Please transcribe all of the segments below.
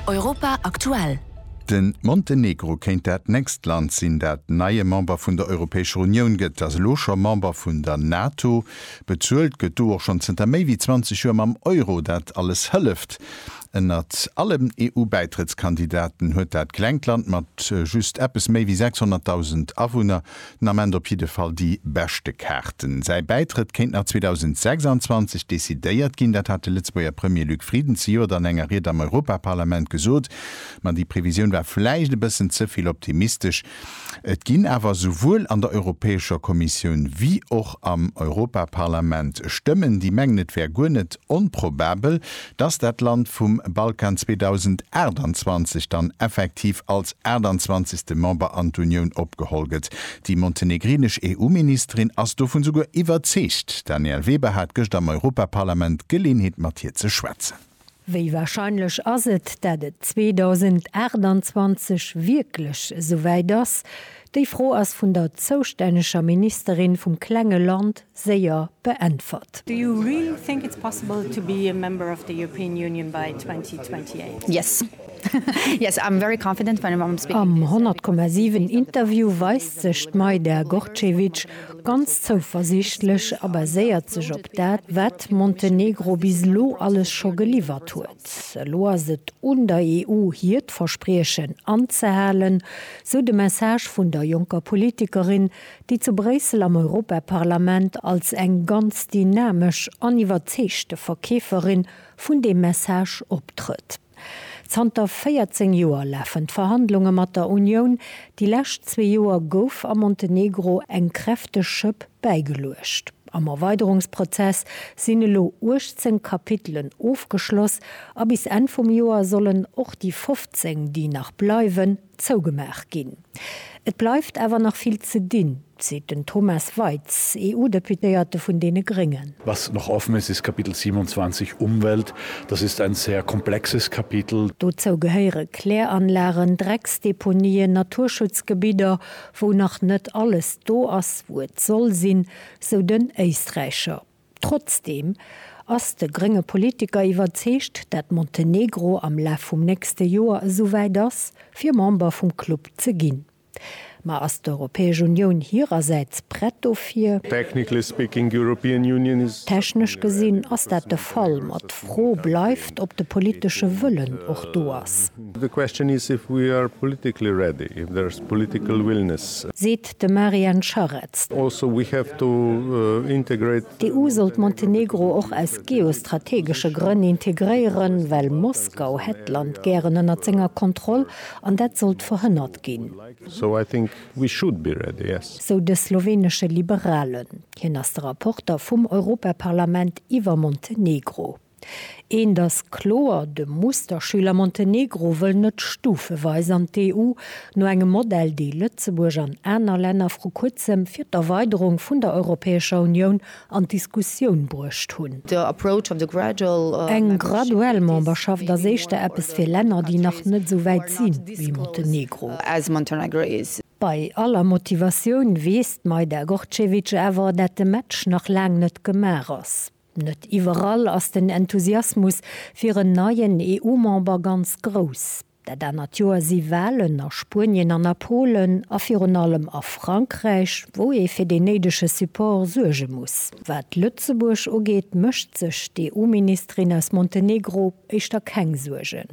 Europa aktuell. De Montenegro kéint dat nächst Land sinn, dat neie Member vun der Europäescher Unioun gëtt. Ass elo scho Member vun der NATO. Bezuelt gëtt do och schonn zënter méi wéi 20 Joer mam Euro. Dat alles hëlleft. Ënnert allen EU-Bäitrëttskandidaten huet dat klengt Land mat just eppes méi wéi 600.000 Awunner Den Ament op jidde Fall déi beschte Kaarten. Säi Bäitrëtt kéint nach 2026 decidéiert ginn. Dat hat de Lëtzebuerger Premier Luc Frieden zejoert an enger Ried am Europaparlament gesot. Ma déi Previsioun war vläicht e bëssen ze vill optimistesch. Et ginn awer esouwuel an der Europäescher Kommissioun wéi och am Europaparlament Stëmmen, déi mengen, et wär guer net onprobabel, dass dat Land vum Balkan 2028 dann effektiv als 28. Member an d'Unioun opgeholl gëtt. Déi montenegrinesch EU-Ministerin ass dovun souguer iwwerzeegt. D'Danièle Weber hat gëscht am Europaparlament d'Geleenheet mat hir ze schwätzen. Wéi warscheinlech ass et, dat et 2028 wierklech esouwäit ass? Déi Fro ass vun der zoustänneger Ministerin vum klenge Land séier beäntwert. Do you really think it's possible to be a member of the European Union by 2028? Am 100,7 Interview weist sech d'Maida Gorcevic ganz zouversiichtlech a baséiert sech op dat, wat Montenegro bis elo alles scho geliwwert huet. Elo ass et un der EU hiert Verspriechen anzehalen, sou de Message vun der jonker Politikerin, déi zu Bréissel am Europaparlament als eng ganz dynamesch an iwwerzeegte Verkeeferin vun deem Message optrëtt. Zanter 14 Joer lafen d'Verhandlunge mat der Unioun. Déi lescht zwee Joer gouf am Montenegro eng kräfteg Schëpp bäigeluecht. Am Erweiderungsprozess sinn elo 18 Kapitelen ofgeschloss a bis Enn vum Joer sollen och déi 15, déi nach bleiwen, Zougemaach ginn. Et bleift awer nach vill ze dinn, seet den Thomas Waitz, EU-Deputéierte vun deene Gréngen. Was noch offen ist, ist Kapitel 27, Umwelt. Das ist ein sehr komplexes Kapitel. Dozou gehéiere Kläranlagen, Drecksdeponien, Naturschutzgebidder, wou nach net alles do ass, wou et soll sinn, sou den Éisträicher. Trotzdeem ass de grénge Politiker iwwerzeegt, dat Montenegro am Laf vum nächste Joer esouwäit ass, fir Member vum Club ze ginn. Ma ass d'Europäesch Unioun hirersäits prett dofir? Technically speaking, the European Union is. Technesch gesinn ass dat de Fall, ma d'Fro bleift, ob de politesche Wëllen och do ass. The question is if we are politically ready, if there is political willingness. Seet de Marian Scharetz. Also we have to integrate. D'EU soll d'Montenegro och aus geostrategesche Grënn integréieren, well Moskau hätt d'Land gären ënnert senger Kontroll an dat sollt verhënnert ginn. So I think we should be ready, yes. Sou de sloweenesche Liberalen. Hien ass de Rapporter vum Europaparlament iwwer Montenegro. Eent ass kloer, de Musterschüler Montenegro wëll net stufeweis an d'EU, no engem Modell, dee Lëtzebuerg an aner Länner vru kuerzem fir d'Erweiderung vun der Europäescher Unioun an d'Diskussioun bruecht hunn. Eng graduell Memberschaft ass éischter eppes fir Länner, déi nach net esou wäit si wéi Montenegro. Bei aller Motivatioun weess d'Majda Gorcevic awer, dat de Match nach laang net gemaach ass. Net iwwerall ass den Enthusiasmus fir en neien EU-Member ganz grouss. Dat anert Joer si Walen a Spuenien an a Polen a virun allem a Frankräich, wou ee fir deen néidege Support suerge muss. Wat Lëtzebuerg ugeet, mécht sech d'EU-Ministerin aus Montenegro éischter keng Suergen.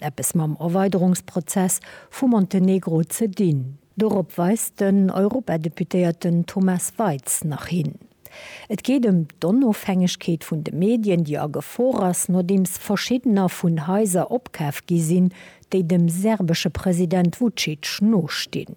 eppes mam Erweiderungsprozess vu Montenegro ze dinn. Dorop weist den Europadeputéierten Thomas Waitz nach hin. Et geet ëm d'Onofhängegkeet vun de Medien, déi a Gefor ass, nodeems verschiddener vun Haiser opkaf gi sinn, déi dem serbesche President Vucic nostinn.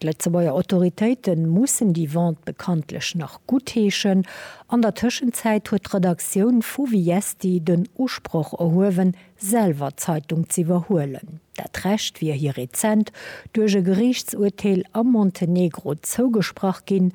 D'Lëtzebuerger Autoritéite mussen déi Vente bekanntlech nach guttheeschen. An der Tëschenzäit huet d'Redaktioun vu Viesti den Usproch erhuewen, selwer d'Zeitung ze iwwerhuelen. Dat Recht wier hir rezent duerch e Geriichtsurteel am Montenegro zougesprach ginn,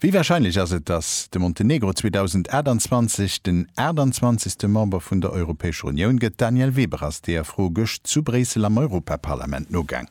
Wéi warscheinlech ass et, datt de Montenegro 2028 den 28. Member vun der Europäescher Unioun gëtt? D'Danièle Weber ass deer Fro gëscht zu Bréissel am Europaparlament nogaang.